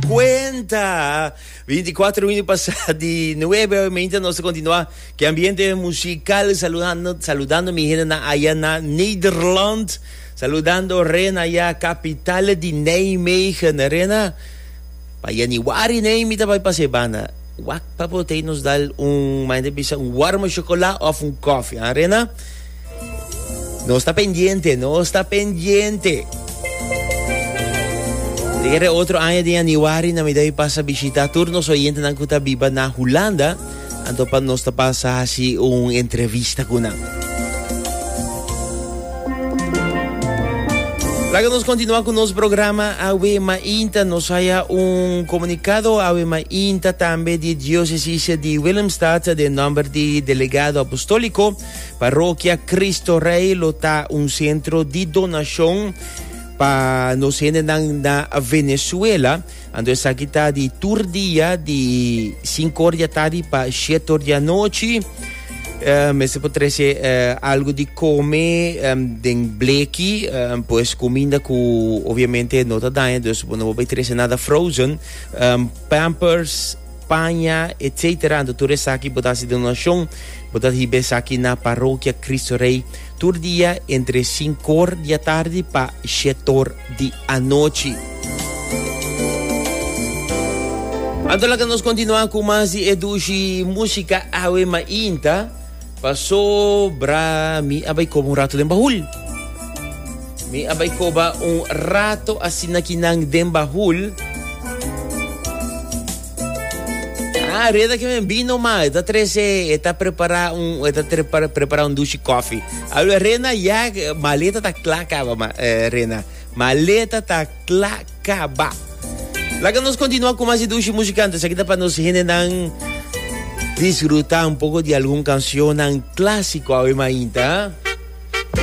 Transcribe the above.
Cuenta! Binticuater minuut pasa di nuebe hoy mientras nos continua que ambiente musical saludando, saludando mi gente na allá na Nederland. Saludando Rena ya capital di Nijmegen. Rena, pa januari nee mi tabai pase bana. Wak pa potei nos dal un maende bisa un warme chocola of un koffie. Ah, Rena? Nos ta pendiente, nos ta pendiente. De guerra otro año de januari na midday pasa visita tur nos oyente nan kuta biba na Hulanda. Anto pa nos ta pasa hasi un entrevista kuna. Laga nos continua con nos programa Awe Ma Inta. Nos haya un comunicado Awe Ma Inta tambe di diócesis di Willemstad de nombre di delegado apostólico Parokia Cristo Rey lo ta un centro di donacion pa nos hendenan na Venezuela. Ando esaki ta di tur dia, di 5 ora dia tardi pa 7 ora dia nochi. Uh, me se po trece uh, algo di come um, den bleki, um, pues comida cu obviamente no ta daña, dus no po trece nada frozen, um, pampers, paña, etc. Anto tur esaki bo ta hasi donacion, bo ta hiba esaki na Parokia Cristo Rey tur dia entre sincor di atardi pa shetor di anochi. Anto laga nos continua cu mas di e dushi musica Awe Mainta. Pasobra mi a bai koba un rato den bahul. Mi a bai koba un rato asina ki nan den bahul. Ah, reda ke men bino ma, e ta trese, e ta prepara un, e ta tre- para- prepara un dushi koffie. Alwe Rena ya maleta ta kla kaba ma, eh, Rena. Maleta ta Tla Kaba. Laga nos continua cu mas dushi musicante. Sakita pa nos hende nan disfruta un poco di algun cancionan clásico awe mainta.